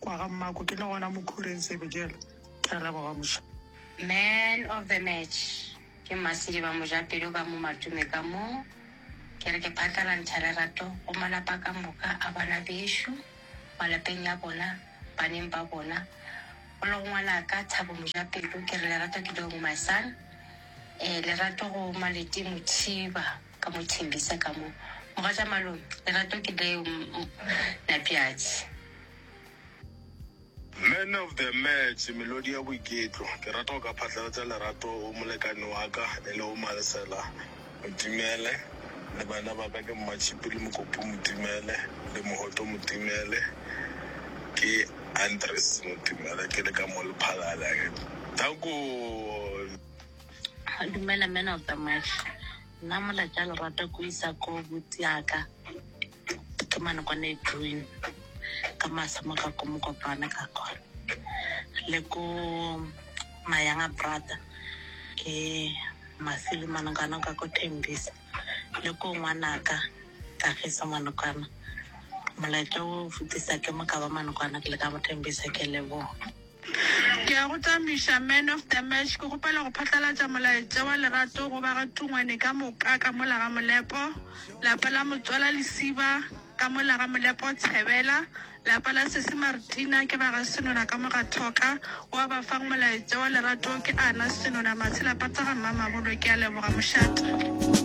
Kwa ga mmako ke le gona mo khureng sebojelo ke a leboga moša. Man of the match ke Masidi ba Mojapelo ka mo Matume ka mo. Ke re ke phatlalantšha lerato go malapa ka moka a bana bešo malapeng ya bona baneng ba bona go le go ngwanaka Thabo Mojapelo ke re lerato ke leong my son. Eh lerato go Maleti Mothiba. Ka mo thembisa ka mo. Mogatša Malome, lerato ke leo Mnapjatši. Man of the match, melodi ya boiketlo. Ke rata go ka phatlalatša lerato go molekane wa ka e lego Maresela Motimele le bana ba ka ke Mmatšhipi le Mokopu Motimele le Mohoto Motimele. Ke Andries Motimele, ke le ka mo Lephalale. Danko! Dumela man of the match. Nna mola tša lerata ko isa ko buti yaka ke mane kwa ne green ka masa mo ka ko mokopane ka kwa le ko mayanga brother ke mafili manokana ka ko tembisa le ko ngwanaka ka fisa manokana molaetša o fetisa ke mo ka ba manokana ke le ka mo tembisa ke leboga Ke a go tamiša, man of the match. Ke kgopela go phatlalatša molaetša wa lerato go ba ga Tungwane ka moka ka mola ga Molepo, lapa la Motswala Lesiba ka mola ga Molepo Tshebela, lapa la Sesi Martina ke ba ga Senona ka mo ga Thoka. Wa ba fang molaetša wa lerato ke Ana Senona Matshela Pata ga Mmamabolo. Ke a leboga mošate.